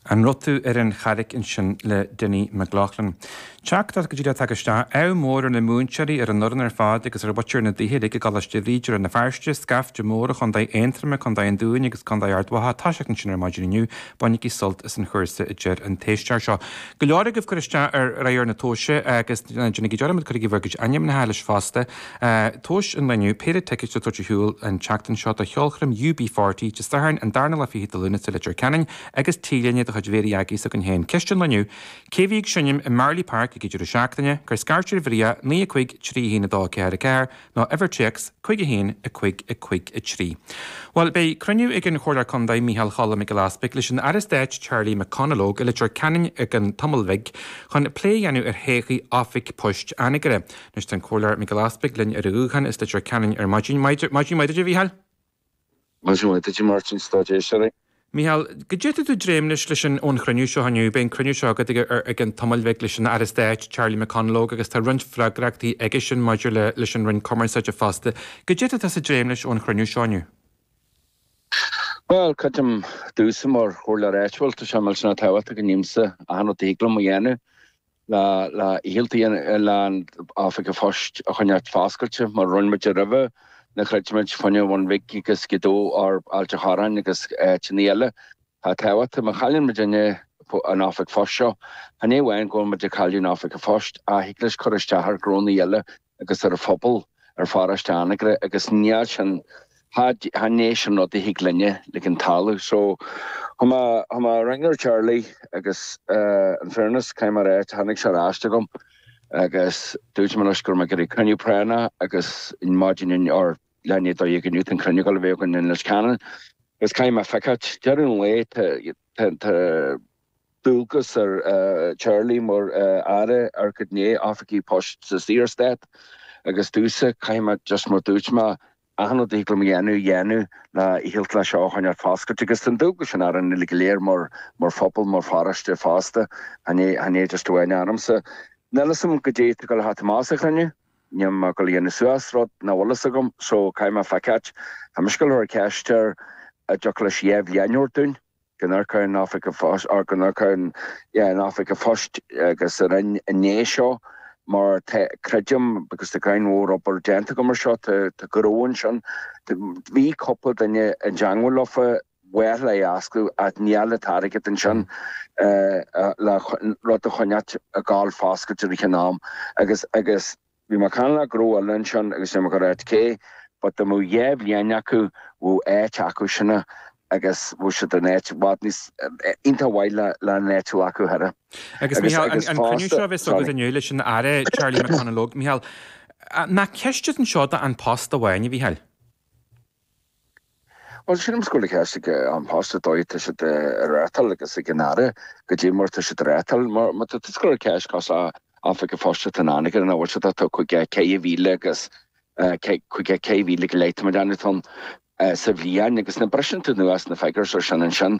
An raibh tú ar an charraig ansin le Dinny McLaughlin? Téacs go díreach atá tagtha isteach. Ádh mór ar na múinteoirí, ar an fhoireann ar fad agus ar mhuintir na dtithe uilig i gColáiste Bhríde, Rann na Feirste, scaifte mór ó Chontae Aontroma, Contae an Dúin agus Contae Ard Mhacha atá ag toiseacht ansin ar maidin inniu, bainigí sult as an chúrsa a deir an t-éisteoir seo. Go leor agaibh ag cur isteach ar ábhar na tomhaise agus ná déanaigí dearmad, cuirigí bhur gcuid ainmneacha leis fosta. Tomhais an lae inniu péire ticéad a tabhairt ar shiúl an tseachtain seo do cheolchoirm UB40, Dé Sathairn, an darna lá fichead de Lúnasa i Leitir Ceanainn, agus T-léine de chuid Mhéaraí Aggie s'againn féin. Ceist an lae inniu cé a bhí ag seinm i Marlay Park ag an deireadh seachtaine? Cuir scairt ar Mharia, 9 5, 3 1 2 4 4, nó uimhir téacs, 51 5 5 3. Bhuel, beidh cruinniú ag an Chomhairleoir Contae, Micheál Cholm Mhic Giolla Easbuig, leis an Aire Stáit, Charlie McConalogue, i Leitir Ceanainn i gceann tamall beag, chun plé a dhéanamh ar thodhchaí Oifig Poist Anagaire. Anois tá an Comhairleoir Mac Giolla Easbuig linn ar an ghuthán as Leitir Ceanainn ar maidin. Maidin, maidin mhaith duit, a Mhichíl! Maidin mhaith duit, a Mháirtín, is a lucht éisteachta. A Mhichíl, goidé a bhfuil tú ag dréim leis, leis an, ón chruinniú seo inniu. Beidh an cruinniú seo agat i gceann tamall beag leis an Aire Stáit, Charlie McConalogue, agus tá roinnt freagrachtaí aige sin maidir le, leis an Roinn Cumarsáide fosta. Goidé a bhfuil tusa ag dréim leis ón chruinniú seo inniu. Bhuel, creidim domhsa mar Chomhairleoir Áitiúil, tá sé millteanach tábhachtach go ndéanaimsa achan rud a thig liom a dhéanamh le hiarracht a dhéanamh oifig a phoist a choinneáilt foscailte mar a rinne muid roimhe, nuair a throid muid fá choinne an Bhun Bhig agus Gaoth Dobhair, Ailt an Chorráin agus áiteanna eile atá tábhachtach. Má chailleann muidinne an oifig phoist seo, chan é amháin go bhfuil muid ag cailleadh an oifig a phoist, ach thig leis cur isteach ar ghnónna eile agus ar an phobal ar pharóiste Anagaire agus níl sin, chan é sin rud a thig linn ligint tarlú so chuaigh mé ag ringeáil ar Charlie agus in fairness caithfidh mé a ráit, tháinig sé ar ais chugam agus dúirt mé leis go raibh mé ag iarraidh cruinniú práinne agus ar maidin inniu ar leath i ndiaidh a dó dhéag inniu tá an cruinniú ag gabháil a bheith againn i Leitir Ceanainn agus caithfidh mé feiceáilt, deireadh an lae tá dualgas ar Charlie mar Aire ar chuid na n-oifigí poist sa Saorstát agus domhsa, caithfidh mé just mar dúirt mé, achan rud a thig liom a dhéanamh, a dhéanamh le feiceáilt leis seo a choinneáilt foscailte agus tá an dualgas sin orainn uilig go léir mar phobal, mar pharóiste fosta, chan é, chan é just amháin ormsa. Níl 'fhios a'm goidé tá goil a theacht amach as an chruinniú, níl mé goil a dhéanamh suas rud nach bhfuil 'fhios agam so caithfidh mé feiceáil. Tá mise goil a chur ceist air an dtiocfadh leis déanamh cinnte. go ndéanfar an oifig an phoist, or go ndéanfar an, yeah, an oifig an phoist, agus ar an ionad seo, mar tá, creidim, because tá giota mór obair déanta agam ar seo, tá, tá gnó ansin. Bhí cúpla duine i dteangmháil leofa, ba mhaith leofa é a oscailt, ach níl an t-airgead ansin, le rud a choinneáilt ag gabháil foscailte i rith an ama, agus, agus, Bhí McConalogue ag rá linn ansin agus é ag ráit cé, but dá mbeadh dhá bhliain acu, bheadh áit acu sin agus bheadh siad in áit i bhfad níos, iontach mhaith le le an áitiú acu thoir. Agus Mícheál, an an cruinniú seo a bheas agaibh inniu leis an Aire Charlie McConalogue, Mícheál, nach ceist é anseo do An Post amháin, a Mhícheáil? Bhuel, sin an scór le ceist ag An Post, an dóigh a tá siad á reáchtáil, agus ag an Aire, caidé mar tá siad á reáchtáil. Mar má tá tú ag scor ar cheist cás An Oifig a' Phoist atá in Anagaire, an bhfuil siad ata chuig ceithre mhíle agus chuig ceithre mhíle go leith, tá mé ag déanamh, sa bhliain, agus nuair a bhriseann tú anuas na figures ar sin ansin.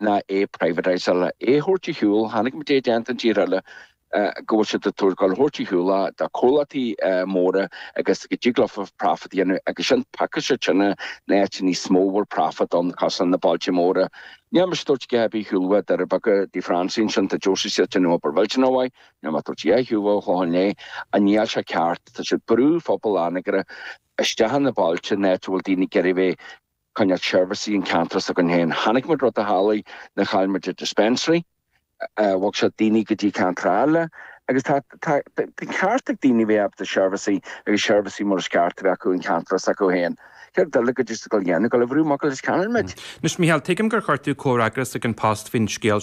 ná é a privatise-áil, é a thabhairt ar shiúl, chonaic muid é déanta in tír eile go bhfuil siad ag tá siad ag gabháil á thabhairt ar shiúl do comhlachtaí móra agus go dtig leofa profit a dhéanamh agus sin because in áit atá níos mó more profit ann cosúil leis na bailte móra níl mise ag tabhairt a dhath ar bith ar shiúl ó Dhoirí Beaga tá Francie ansin tá Josie ag déanamh obair mhillteanach mhaith níl mé ag tabhairt a dhath ar shiúl ón Chlochán Liath ach níl seo ceart tá siad ag brú phobal Anagaire isteach sna bailte in áit a bhfuil daoine ag iarraidh a bheith Coinneáil seirbhísí i gceantar s'againn féin. Chonaic muid rud a tharlaigh nuair a chaill muid an dispensary, bhog siad daoine go dtí ceantar eile agus tá an ceart ag daoine a bheith ábalta seirbhísí agus seirbhísí mar is ceart a bheith acu i gceantar s'acu féin. Céard d'fhill caidé tá siad ag gabháil a dhéanamh, ag gabháil a bhrú amach a leis ceannaigh muid. Anois, Mícheál, tuigim gur chuir tú comhfhreagras chuig An Post faoin scéal